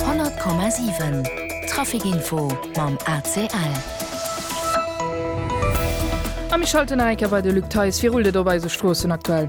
100,7 Trafikinfo mam ACL. A mir schalten nach eng Kéier bei de Luc Theis. Wéi rullt et op eise Stroossen aktuell?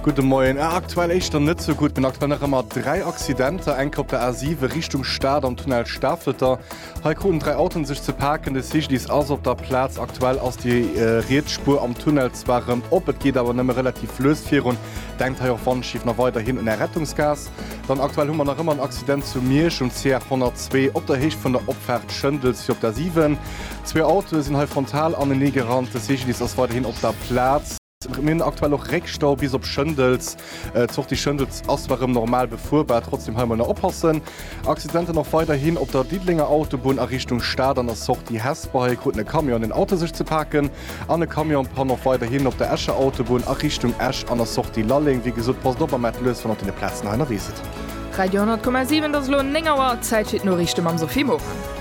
Gudde Moien. Ë, aktuell éischter net sou gutt. Mir hunn aktuell nach ëmmer dräi Accidenter, enker op der A7 Richtung Stad am Tunnel Stafeter, Hei kruten dräi Autoen sech ze paken. De CGDIS ass op der Plaz. Aktuell ass déi riets Spuer am Tunnel zwar rem op, et geet awer nëmme relativ lues virun. Denkt hei och Wandschief nach weiderhin un Är Rettungsgaass. Dann aktuell hu mer nach ëmmer en Accident zu Miersch um CR 102 op der Héicht vun der Opfaart Schëndels fir op der 7. Zwee Autoe sinn hei frontal anenee gerannt. De CGDIS ass weiderhin op der Plaz. Mir hunn aktuell och Réckstau bis op Schëndels. D'Sortie Schëndels ass zwar erëm normal befuerbar, trotzdeem hei emol nach oppassen. Accidenten och weiderhin op der Diddelenger Autobunn a Richtung Stad an der Sortie Hesper. Hei kruten e Camion an en Auto sech ze paken an e Camion-Panne och weiderhin op der Escher Autobunn a Richtung Esch an der Sortie Lalleng. Wéi gesot, passt op a maacht lues, wann der op deene Plazen hei ënnerwee sidd. Radio 100,7, et ass elo 9 Auer, Zäit fir d'Noriichte mam Sophie Morang.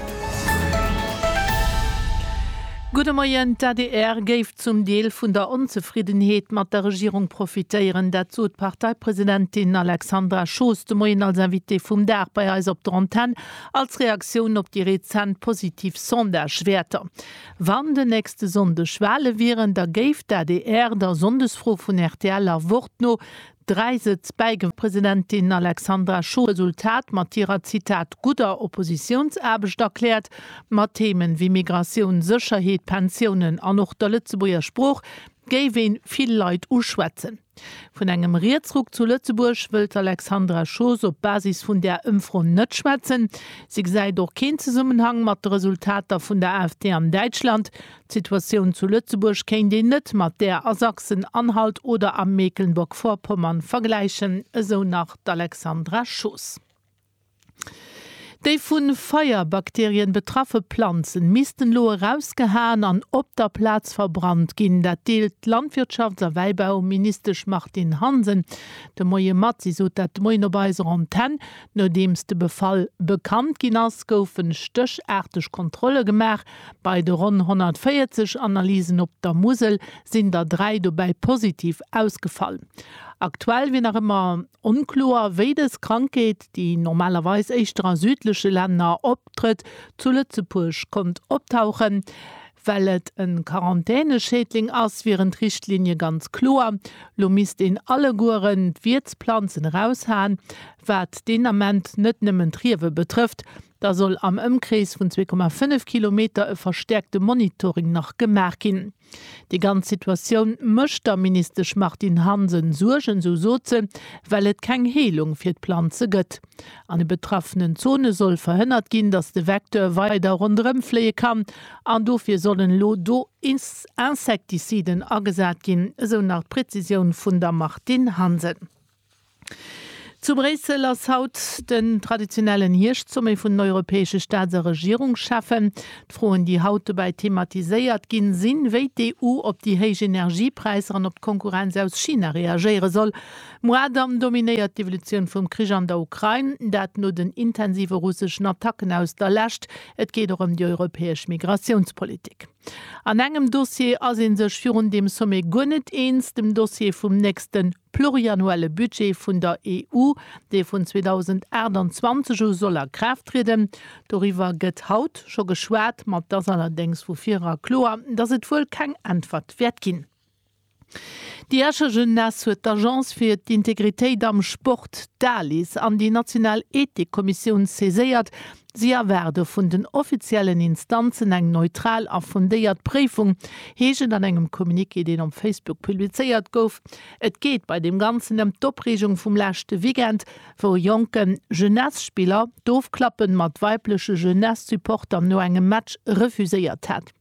Gudde Moien, d'ADR géif zum Deel vun der Onzefriddenheet mat der Regierung profitéieren. Dat sot d'Parteipresidentin Alexandra Schoos de Moien als Invitée vum Dag bei eis op der Antenn, als Reaktioun op déi rezent positiv Sondagewäerter. Wann den nächste Sonndeg Wale wieren, da géif d'ADR der Sonndesfro vun rtl a Wort no 3 Sëtz bäigewonnen. Presidentin Alexandra Schuh huet d'Resultat mat hirer, Zitat, gudder Oppositiounsaarbecht erkläert, mat Themen ewéi Migratioun, Sécherheet, Pensiounen an och der Lëtzebuerger Sprooch géif een vill Leit uschwätzen. Vun engem Rietsruck zu Lëtzebuerg wëllt d'Alexandra Schoos op Basis vun där Ëmfro net schwätzen. Si gesäit och keen Zesummenhang mat de Resultater vun der AfD an Däitschland. D'Situatioun zu Lëtzebuerg kéint een net mat där a Sachsen-Anhalt oder a Mecklenburg-Vorpommern vergläichen, esou nach d'Alexandra Schoos. Déi vu Feierbakterien betraffe Planzen missten elo erausgehaen an op der Plaz verbrannt ginn. Dat deelt d'Landwirtschafts a Wäibauministesch Martine Hansen de Moie mat. Si sot dat de Moien op eiser Antenn. Nodeems de Befall bekannt ginn ass, goufe stéchaarteg Kontrolle gemaach. Bei de ronn 140 Analysen op der Musel sinn der dräi dobäi positiv ausgefall. Aktuell wier nach ëmmer onkloer, wéi dës Krankheet, déi normalerweis éischter a südleche Länner optrëtt, zu Lëtzebuerg konnt optauchen. Well et e Quarantäneschädling ass, wieren d'Richtlinie ganz kloer, Lo misst een allegueren d'Wiertsplanzen eraushaen, wat deen Ament net nëmmen d'Riewe betrëfft, Da soll am Ëmkrees vun 2,5 Kilometer e verstäerkte Monitoring nach gemaach ginn. Déi ganz Situatioun mécht der Ministesch Martine Hansen Suergen, esou sot se, well et keng Heelung fir d'Planze gëtt. An de betraffenen Zone soll verhënnert ginn, datt de Vecteur weider ronderëm fléie kann an dofir sollen elo do Insektiziden agesat ginn, esou nach d'Prezisioun vun der Martine Hansen. Zu Bréissel ass haut den traditionellen Hierscht-Sommet vun den europäesche Staats a Regierungscheffen. D'Froen, déi haut dobäi thematiséiert ginn, sinn, wéi d'EU op déi héich Energiepräisser an op d'Konkurrenz aus China reagéiere soll. Muadam dominéiert d'Evolutioun vum Krich an der Ukrain, dat no den intensive russeschen Attacken aus der Lescht. Et geet och ëm déi europäesch Migratiounspolitik. An engem Dossier ass ee sech virun deem Sommet guer net eens, dem Dossier vum nächste pluriannuelle Budget vun der EU, dee vun 2028 u soll a Kraaft trieden. Doriwwer gëtt haut scho geschwat, ma 't ass allerdéngs vu virear kloer, dass et wuel keng Äntwert wäert ginn. Déi Escher Jeunesse huet d'Agence fir d'Integritéit am Sport, d'ALIS, an déi national Ethikkommissioun saiséiert, Si erwaarde vun den offiziellen Instanzen eng neutral a fundéiert Préifung, heescht et an engem Communiqué, deen op Facebook publizéiert gouf. Et geet bei deem Ganzen ëm d'Opreegung vum leschte Weekend, wou e jonke Jeunesse-Spiller d'Ofklappe mat weibleche Jeunesse-Supporter no engem Match refuséiert hat.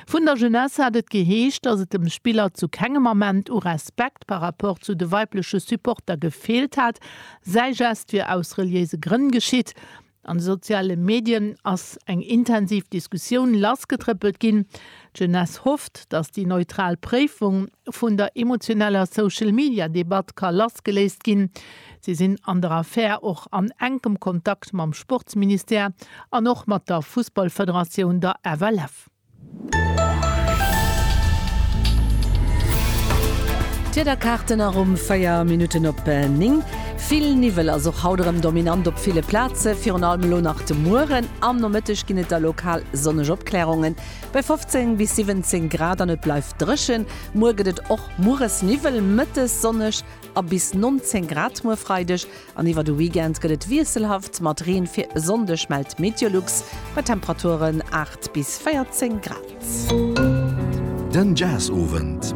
Vun der Jeunesse hat et geheescht, dass et dem Spiller zu kengem Ament u Respekt par rapport zu de weibleche Supporter gefeelt hat, säi Gest wier aus reliéise Grënn geschitt. An de soziale Medien ass eng intensiv Diskussioun lassgetrëppelt ginn. D'Jeunesse hofft, dass déi neutral Préifung vun der emotioneller Social-Media-Debatt ka lassgeléist ginn, Si sinn an der Affär och an enkem Kontakt mam Sportsministère an och mat der Fussballfederatioun, der FLF. D'Wiederkaarten aromm 4 Minutten op 9. Vill Niwwel ass och haut erëm dominant op ville Plaze, virun allem elo nach de Mueren. Am Nomëtteg ginn et da lokal sonneg Opklärungen bei 15 bis 17 Grad an et bleift dréchen. Muer gëtt et och mueres Niwwel, mëttes sonneg. a bis 19 Grad muer Freideg an iwwer de Weekend gëtt et wiesselhaft mat Reen, fir e Sonndeg mellt d'Meteolux bei Temperaturen 8 bis 14 Grad. Den Jazzowend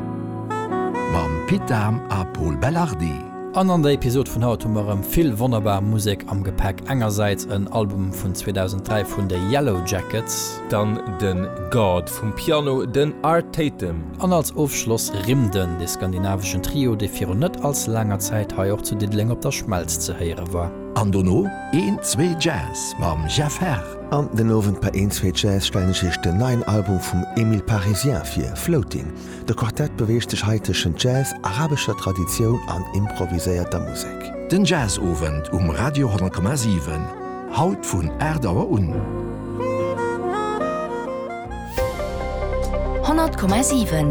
mam Pit Dahm a Pol Belardi. An an der Episod vun haut hu mer erëm vill wonnerbar Musek am Gepäck. Engersäits en Album vun 2003 vun de Yellow Jackets. Dann den God vum Piano, den Art Tatum. An als Ofschloss Rimden, de skandinaveschen Trio, dee virun net als laanger Zäit hei och zu Diddeleng op der Schmelz ze héiere war. An dono een zwee Jazz mam Jeff Herr. An den Owend bei een zwee Jazz stellen ech iech den neien Album vum Emile Parisien vir, Floating. De Quartett beweegt sech hei tëschent Jazz, arabescher Traditioun an improviséierter Musek. Den Jazzowend um Radio 10,7, haut vun 8 Auer un. 100,7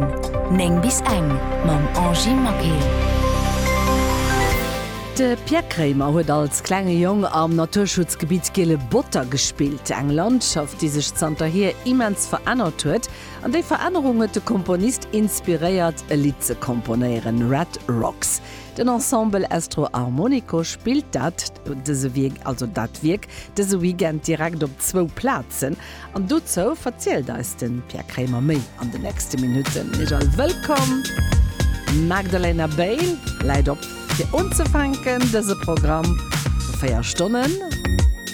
9 bis eng mam Angy Maquet. De Pierre Kremer huet als klenge Jong am Naturschutzgebitt Giele Botter gespillt, eng Landschaft, déi sech zanterhier immens verännert huet. An déi Verännerung huet de Komponist inspiréiert, e Lidd ze komponéieren, Red Rocks. Den Ensemble Estro Armonico spillt dat dëse Wierk, also dat Wierk dëse Weekend direkt op zwou Plazen. An dozou verzielt eis de Pierre Kremer méi an den nächste Minutten. Iech all wëllkomm! D'Magdalena Bale läit op. Fir unzefänken dëse Programm vu 4 Stonnen,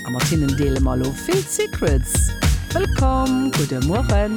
a mat hinnen deele mer lo vill Secrets. Wëllkomm, gudde Mueren.